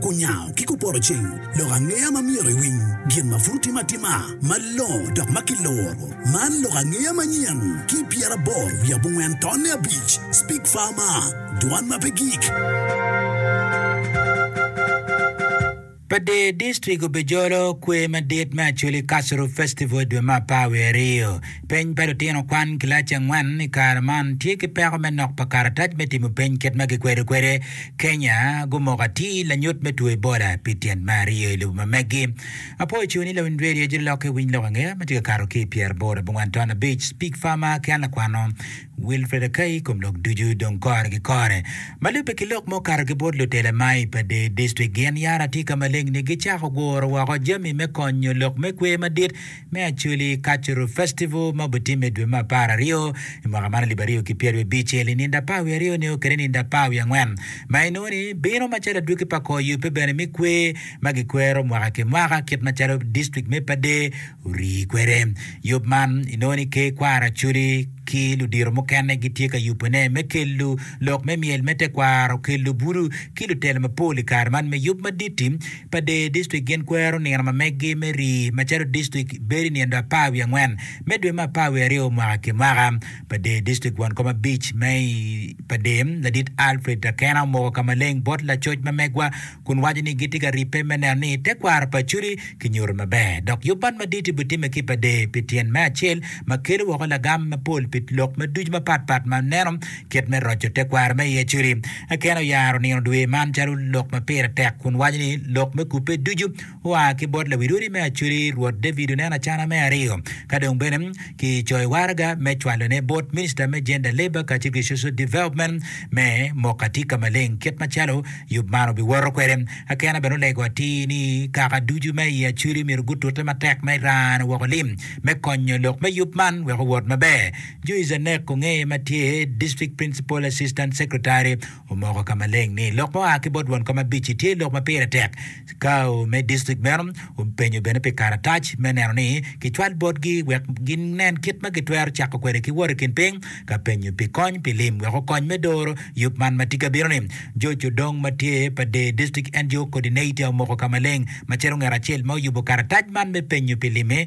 Kunyango ki kupoto cing lok angeya ma myero iwiny gin ma pud otim atima malongo dok ma kiluro. Man lok angeya manyen ki i pyeraboro wiye abongwen tonne abic, Speak Farmer, Dwan ma pe gik. Pa Dee District obejolo kwer madit me Acholi Cultural Festival i dwe me apar wiye aryo. Peny pa Lutino Kwan Kilaci Angwen i Kare Man Tye ki Peko me Nok pa Karatac me Timo Peny Kit ma Gikwedo Kwede, Kenya Gumoko Atir Lanyut me Two Ebola pi Tyen me Aryo i Lobo ma Megi Apo Icung ni Lawiny Redio Jiri Lokke Winy Lok Angeya ma Tye ka Kato ki i Pyera Aboro Abongwan Ton Abic Speak Farmer Ki An Lakwano Wilfred Akai I Kom Lok Ducu Dong Kore Ki Kore Ma Lubbe Ki Lok ma Okato Ki Bot Lutela Mai Pa Deer District Gin Yara Tye Ka Maleng Ni Gicako Guro Woko Jami me Konyo Lok me Kwer Madit me Acholi Cultural Festival ma obitimme i dwe me apar aryo i mwaka man alip aryo ki pyerabiryo abicel i ninde apar wiye aryo nio kede ninde apar wiye angwen ma inongo ni bino macalo adwogi pa kor yubbe bene me kwer ma gikwero mwaka ki mwaka kit macalo dictrict me Pader orii kwede. Yub man inongo ni Ker Kwaro Acholi ki ludito mukene gitye ka yubone me kelo lok me myel me tekwaro, kelo budu ki lutela mapol i kare man me yub madit-ti. pa dee distrik gin kwero nino ma meggi me rii macalo distrik bedo i nindo apar wiye angwen me dwe me apar wiye aryo mwaka ki mwaka. Pa dee distrik won kom abic me i pa dee ladit Alfred Akena omoko ka maleng bot lacoc ma megwa kun waco ni gitye ka ribbe me neno ni tekwaro pa Acholi kinyuto maber dok yub man madit ibitimme ki pa dee pi tyen me acel ma kelo woko lagam mapol pi lok ma ducu mapat pat ma neno Kit me roco tekwaro me iye codi. Akena oyaro nino dwe man calo lok ma pire tek kun waco ni lok me kubbe ducu oa ki bot lawil odi me Acodi. Rwot David oneno acana me aryo ka dong bene ki coyo waraga me cwalone bot Minista me Gender Labour kacel ki Social Development me moko atika maleng kit macalo yub man obiwoto kwede. Akena bene olego atir ni kaka ducu me i Acodi myero gutute matek me rane woko lim me konyo lok me yub man wek owot maber. Joyce Anek Ongeye ma tye District Principal Assistant Secretary omoko ka maleng ni lok ma oa ki bot Won Kom Abici tye lok ma pire tek. Cao me district meno openyo bene pi karatac me neno ni kicwal botgi wek ginen kit ma gitwero cako kwede ki wot i kin piny ka penyo pi kony pi lim wek okony me doro yub man ma tye ka bino ni. George Odong ma tye pa Dee District NGO Coordinator omoko ka maleng macalo ngat acel ma oyubo karatac man me penyo pi lim-mi.